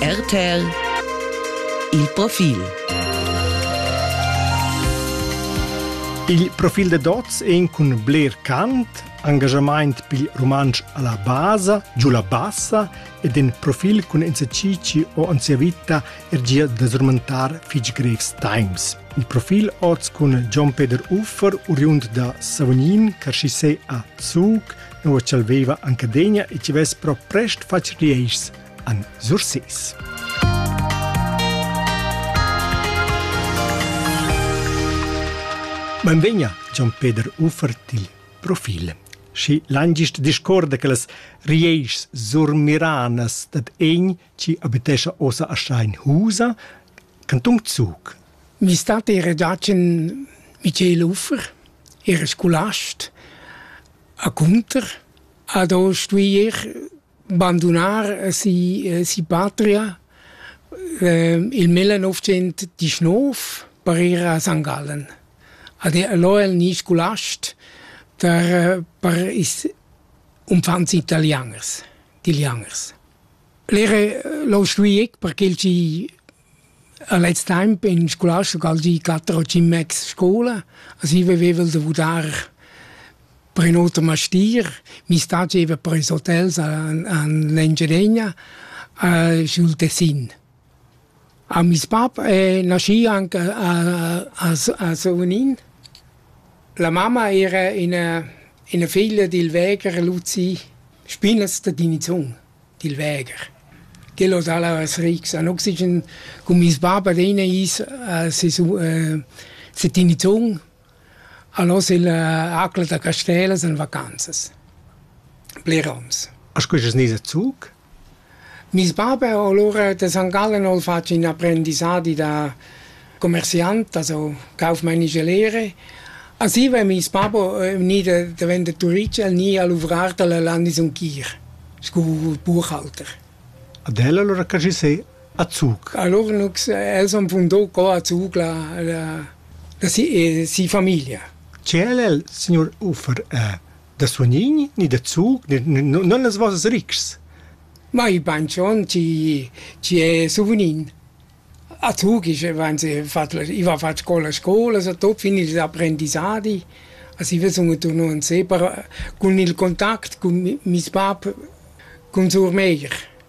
RTL Il profil Il profil de Dots en cun bler cant, engagement pil romansch alla basa, giù la bassa ed in profil cun esercizi o en sia vita er gia da srmantar fitg grevs times. Il profil oz cun Gian Peter Uffer, oriund da Savognin, Carschissé a Zug, nua ch'el veva anc adegna e chi vess però prest fatg rieischs, han Surses. Benvegna, Gian Peter Uffer, til profil. Schi langist discorda che las rieischs surmiranas dad egn chi abitescha ossa a Schein Husa Canton Zug. Mi stat era giat in Michel Uffer, era scolast, a Cunter, ad ho stuier bandunar si, si patria ehm, il 1919 per ir a St. Gallen. Ad lo el ni scolast per, per is umfants italianers, italianers. L'era l'ho stuì ec perché el gi a lez temp in scolastica al gi quatter o tschient mais scoula, as i veveva'ls da vudar per ün oter mastier, mi sta gieva per ils hotels a an l'Engiadegna, sch'el tessin. A meis bap è naschì anc a a a Sunin. La mamma era ina ina figlia dil vegher Luzi Spinazter Dinizun, dil vegher. Quel hoz al es rics an oxigen. Cun meis bap ad ena ais a se Tinizun. Al hoz il acla da Castell es en vacanzas. Blerons. A scujas nis a Zug? Meis bab ha alura da San Gallen ho'l fat ün apprendissadi da commerciant, also cauf maine gelere. A Siva è meis bab gnü da daventà turist, el gnü a luvrar da la Landesumkir scu buchhalter. Ad el alura che schi sè a Zug? Allura nu els han fundà co a Zug la la la si famiglia. Che el el, signur Uffer, Da suonign ni da zug non las vossas ritgs. Ma i bain schon chi chi è suvnin. A Zug ich wenn sie fat ich war fat scola scola so tot fin ils apprendissadi. As i sun turno in sepa cun il contact cun meis bap, cun sur meir.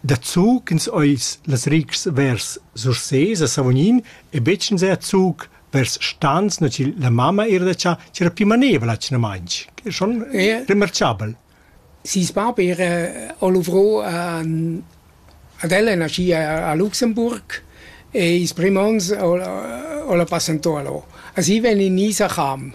Daco ch'ins eis las retgs vers Sursés a Savognin e betg enzatgei zuc vers stans, nua ch'il- la mamma era da tschar, ch'era pli manevra atgnamain, ch'era schon Ie. remarchabel. Seis bab era o luvrò a- ad el e nascì a a Luxemburg e ils prüm ons o la o la passantò a lò. A si vegn in nis a Cham.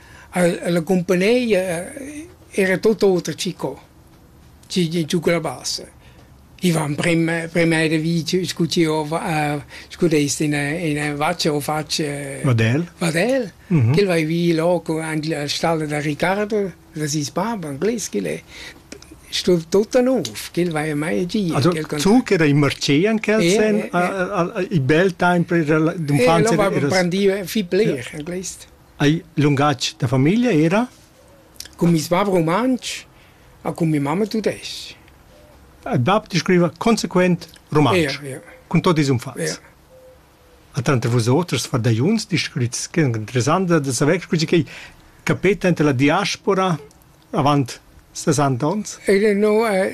Ella cumpagnìa era tut oter che co, chi giuca la bassa. I van primma primma da vici scu chi hova scu dess in ina vaccia o faccia vadel vadel ch'el vai vi là aint la stalla da Ricardo da seis bab anglais ch'el è sto tutta nouv ch'el vaja mai gia zu ch'era in marché an quel sen il bel temps per d'unfants era brandiva fich bler anglais Ei lungatg da famiglia era? Cun mes bab rumantsch e cun mia mamma tudestg. Il bab descriva consequent rumantsch, ja, ja. cun tot ils umfats. Ja. A tranter vosoters fardagliuns descrits che interessant da saver scusi che capeta enta la diaspora avant 60 ons? Ele no è